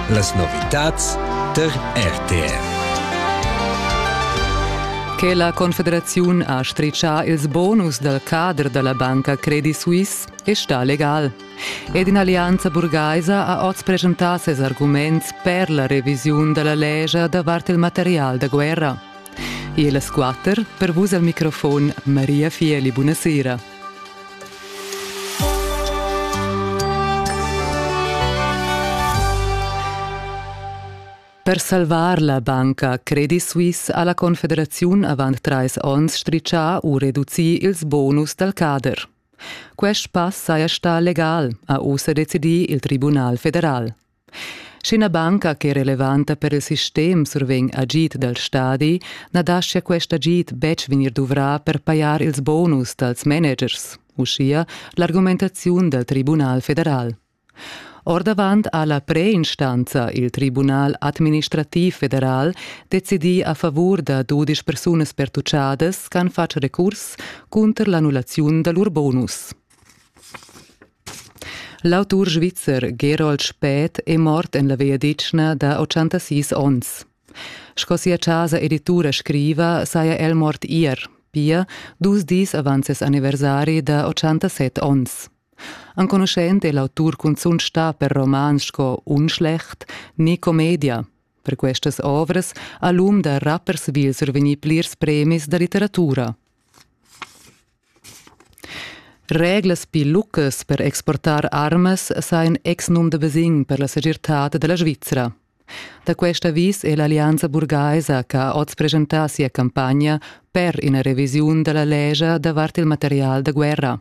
Las novitads tar RTR. Che la Confederaziun ha stritschà ils bonus dal cader da la banca Credit Suisse è stà legal. Ed in'allianza burgaisa ha oz presentà ses arguments per la revisiun da la legia davart il material da guerra. E las quatter, per vus al microfon Maria Fieli, buonasera. Per salvar la banca Credit Suisse ha la Confederaziun avant trais onns stritschà u reducì ils bonus dal cader. Quest pass saja stà legal, ha ussa decidì il Tribunal federal. Sch'ina banca ch'è relevanta per il sistem survegn agid dal stadi, na dascha quest agid betg vegnir duvrà per pajar ils bonus dals managers, uschia l'argumentaziun dal Tribunal federal. Ordavant ha la preinstanza, il Tribunal administrativ federal, decidì a favur da dudisch persunas pertucciadas ch'han fatg recurs cunter l'annullaziun da lur bonus. L'autur svizzer Gerold Spät è mort en la vegliadetgna da 86 onns. Sco sia chasa editura scriva, saja el mort ier, pia dus dis avant ses anniversari da 87 onns. Enconuschent è l'autur cunzunt stà per romans sco Unschlecht ni Commedia. Per questas ovras ha l'um da rappers vil survegnì plirs premis da litteratura. Reglas pli lucas per exportar armas sa in exnum da Besign per la segirtad dalla Svizra. Da quest avis è l'Allianza burgaisa che ha oz presentà sia campagna per ina revisiun dalla legia davart il material da guerra.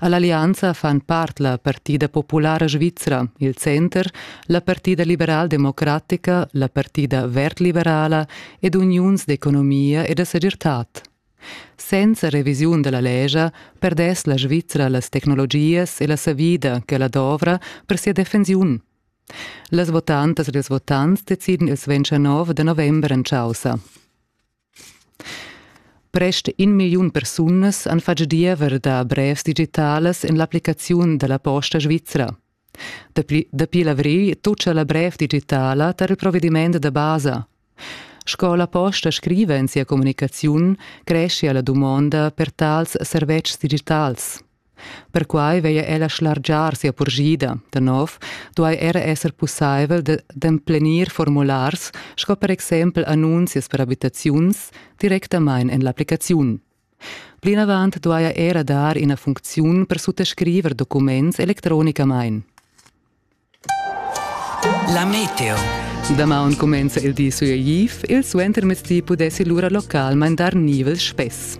All'allianza fan part la Partida Populara Svizra, il Center, la Partida Liberal-Democratica, la Partida Verd-Liberala ed Uniuns d'economia e da segirtad. Senza revisiun dalla lescha perdess la Svizra las tecnologias e la savida che ella dovra per sia defensiun. Las votantas ed ils votants deciden il 29 da november en chaussa. Prest in milliun persunas han fatg diever da brevs digitalas en l'applicaziun dalla posta svizra. Dapi, dapi l'avrigl tutscha la brev digitala tar il provediment da basa. Sco la posta scriva en sia communicaziun, creschia la dumonda per tals servetschs digitals. Perquai veglia ella schlargiar sia purgida. Da nov duai era esser pussaivel d'emplenir formulars sco per exempel annunzias per abitaziuns directamain en l'applicaziun. Plinavant duaja era dar ina funcziun per suttascriver documents electronicamain. La meteo. Damaun cumenza il di sui Aiv, il suentermezdi pudessi lura localmain dar nivels spess.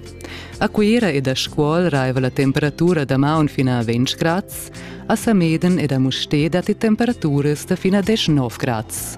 A Cuira ed a Scuol raiva la temperatura damaun fin a 20 grads, a Sameden ed a Mustér datti temperaturas da fin a 19 grads.